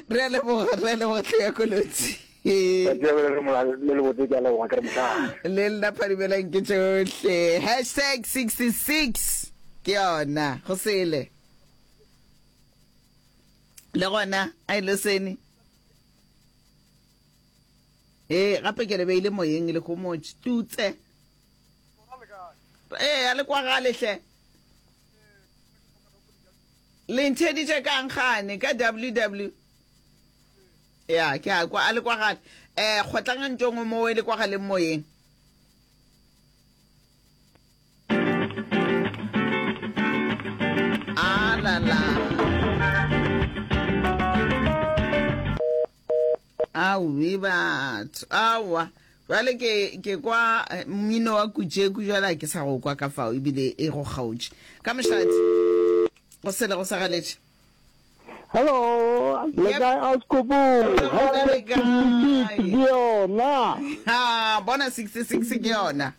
Re a leboga, re a leboga tlhe ya kolotsi. Le nna phadimelang ke tšohle. Hashtag 66 ke yona, go sele. Le gona, a ile sene. Eh, gape ke le beile moyeng le go mo tutse. Eh, a le kwa gale hle. Le ntheditše kang gane ka WW? Ya, ke a kwa a le kwa gale. Eh, kgotlanga ntong o mowe le kwa galeng moyeng. Alala. Aowi batho aowa jwale ke ke kwa eh, mmino wa kujeku jwale a ke sa go kwa ka fao ebile e go kgaotše ka mošadi go sele go sagaletše Hello, le Yep. kae Auskopo? Re Ha gona le kae? 66 ke yona. ha bona 66 ke yona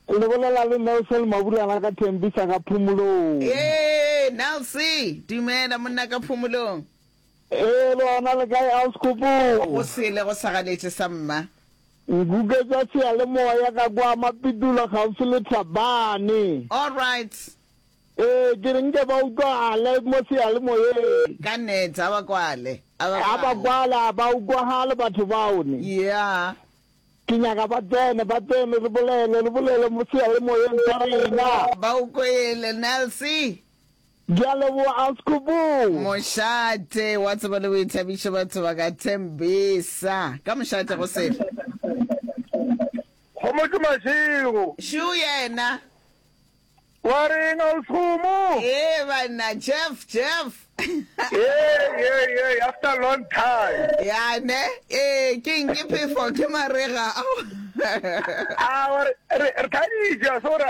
Ke le bolela le Nelson Maburana ka Thembisa ka Phomolong. ee nelse dumela monna ka phomolong Ee, le gona le kae Auskhupu? Go sele go sa ganetše sa mma. Nkuke tša seyalemoya ka kwa Mapitula kgauswi le Thabane. All right. Ee, ke re nke ba utlwagale mo seyalemoyeng. Ka nnete, a ba kwale. A ba A ba kwale. kwale, a ba utlwagale batho bao ne. Yeah. Ke nyaka ba tsene, ba tsene, re bolele, re bolele mo seyalemoyeng sa rena. Ba o kwele, Nelsie. Ke a leboga Sekgopong. Mošate wa tsebo le boithabišo batho ba ka Thembisa ka mošate go sele. Kgomo ke mašego. Shoe yena. Wa reng a o Sekgomo? Ee banna Jeff Jeff. Ee ee ee after long time. Ya ne ee ke eng ke phefo ke marega. A wa re re re thabitša so ra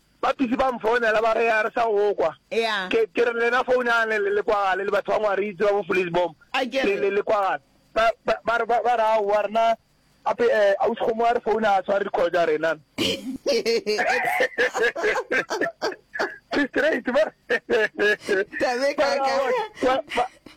Bapisi ba mfounela ba re ga re sa go kwa. Ke ke re lena founang le le kwagale le batho ba Ngwaritse ba bo Vleesbom le le le kwagale. Ba ba ba re ba ba re aowa rena gape eh Ausi Kgomo a re founa a tshware di-call tsa rena. Ke straight ba re ba re aowa ba ba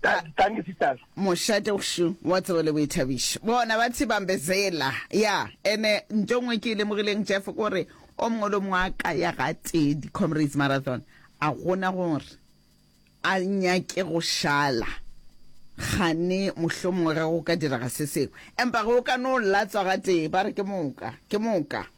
Thank you, sisters. mošate gšu wa tsebo le boithabišo bona ba tshibambezela ya ene nto ngwe ke e lemogileng jeff kore o mongwe le mongwe a ka ya ga tee di-comrades marathon a gona gore a nyake go šala gane mohlho mongwe ge go ka diraga se sengwe empa ge o ka no latswa ga tee ba re ke moka ke moka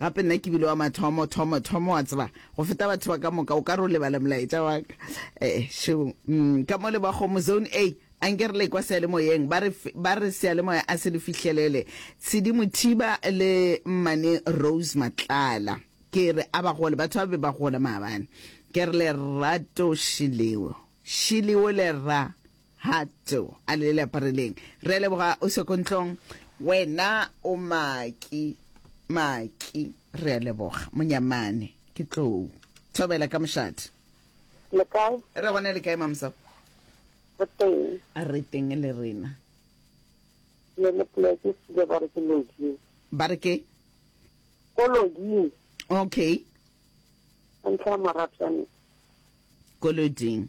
Gape nna ke bile wa mathomo, thomo, thomo, wa tseba, go feta batho ba ka moka. O ka re o lebala molaetša wa ka. Eh, šo. Mm, ka mo le ba kgomo, Zone A. Anke re lekwa seyalemoyeng, ba re, ba re seyalemoya a se le fihlelele. Tshidi Mothiba le Mmane Rose Matlala. Ke re a ba gole, batho ba be ba gola maabane. Ke re Lerato Shileo, Shileo Lera. Ha tso a le le apareleng. Re a leboga o se ko ntlong. Wena o maki maki re a leboga monyamane ke tlou thobela ka mošate. Le kae? Re gone le kae mamsa? Re teng. A re teng le rena. Le le pleke se ba re ke lodi. Ba re ke? Ko lodi. Okay. Ntlha maratsane. Ko loding.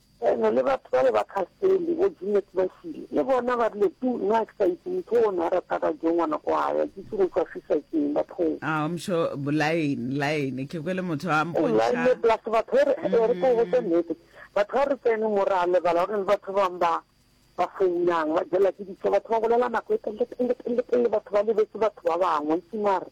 Ene le batho bale ba khastele, bo Junet ba šile, le bona ba rile, Tu, na ke sa itse motho o ne a rata ka jo ngwana ko gae, a kitse go tšwafisa keng ba phou. Ao mxo, bolaeng, laeng, ke kwele motho a Ee, laeng, mpontšha. plus batho e re, e re ke go botša nnete, batho ha re tsene mo ra lebala gore le batho ba bang ba, ba founang, ba jelwa ke ditšhogo, batho ba bolela nako e telele, telele, telele, telele, batho ba lebetse batho ba bangwe, itse mare.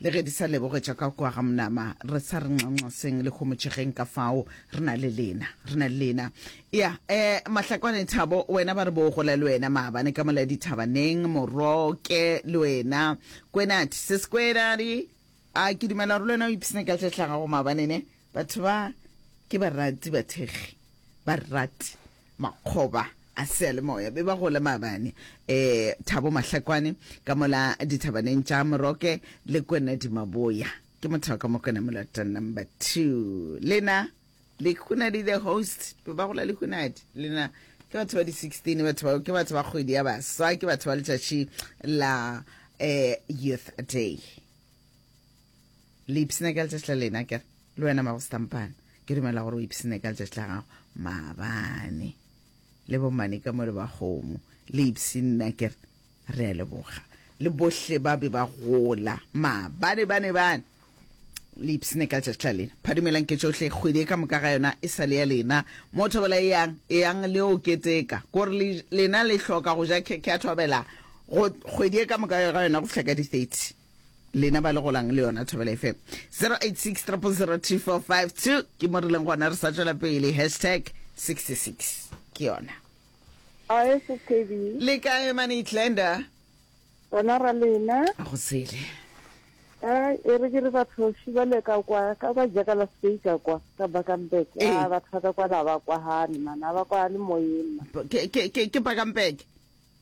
Le ge di sa lebogetša ka kua ga monama, re sa re nxanxaseng le homotšegeng ka fao, re na le lena, re na le lena. Ya, eh, Mahlakwane Thabo, wena ba re bo gola le wena maabane ka mola dithabaneng, Moroke, le wena, Kwenati, Sis Kwenati, a ke dumela gore le wena o ipshine ka tše hlagago maabane ne? Batho ba ke barati bathekgi, barati. makgoba a seyalemoya be ba gola maabane e Thabo Mahlakwane ka mola dithabaneng tša Moroke le Kwenedi Maboya. Ke motho wa ka Mokwena Molata number two. Lena Lehunadi the host be ba gola Lehunadi lena ke batho ba di 16 batho bao ke batho ba kgwedi ya baswa ke batho ba letšatši la eh, youth day. le ipsene ka letšatši la lena kere le wena mago setampane ke dumela gore o ipsene ka letšatši la gago maabane le bomane ka mo le ba kgomo le ipsene kere re a leboga le bohle ba be ba gola maabane bane bane le ipsene ka letšatši la lena phadumelang ke tsohle kgwedi e ka moka ga yona e sa le ya lena mo thobela e yang e yang le o keteka kore lena le hloka go ja khekhe ya thobela kgwedi e ka moka ga yona go fihla ka di-thirty lena ba le golang le yona thobela fm 086 003452 ke mo re leng gona re sa tswela pele hashtag 66 ke yona le kae mane tlenda bona ra lena go sele e re ke re batho šibale ka kwa ka kwa jakala speika kwa ka bakampek a ee. batho ba ka kwa la ba kwa gane mana ba kwa le moyena ke bakampek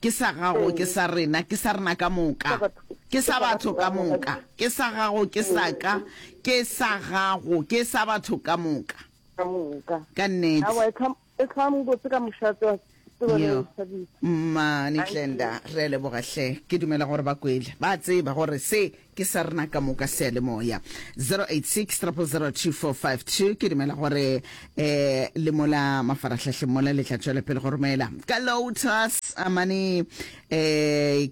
Ke sa gago, ke sa rena, ke sa rena ka moka. Ke sa batho ka moka. Ke sa gago, ke sa ka. Ke sa gago, ke sa batho ka moka. Ka moka. Ka nnete. E tlhwang botse ka mošato. Mmane Tlenda, re a leboga hle. Ke dumela gore ba kwele, ba tseba gore se ke sa rena ka moka seyalemoya 0860002452 ke dumela gore um le mola mafaratlhatlheng mola le tla tswela pele go romela ka lotus amane um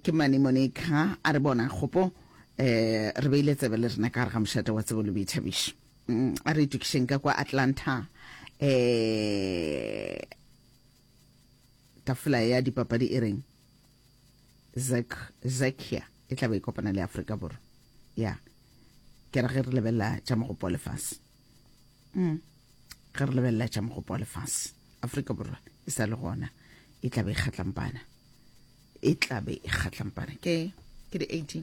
ke mane monica a re bona kgopo um re beile tsebe le rena ka gare ga mošate wa tsebo le boithabišo mm, a re itokišeng ka kwa atlanta um tafola ya dipapadi e reng zakia e tla be e kopana le Afrika Borwa ya ke re ge re lebelela tša mogopo wa lefase mm. ge re lebelela tša mogopo wa lefase Afrika Borwa e sa le gona e tla be e kgatlampana e tla be e kgatlampana ke ke di 18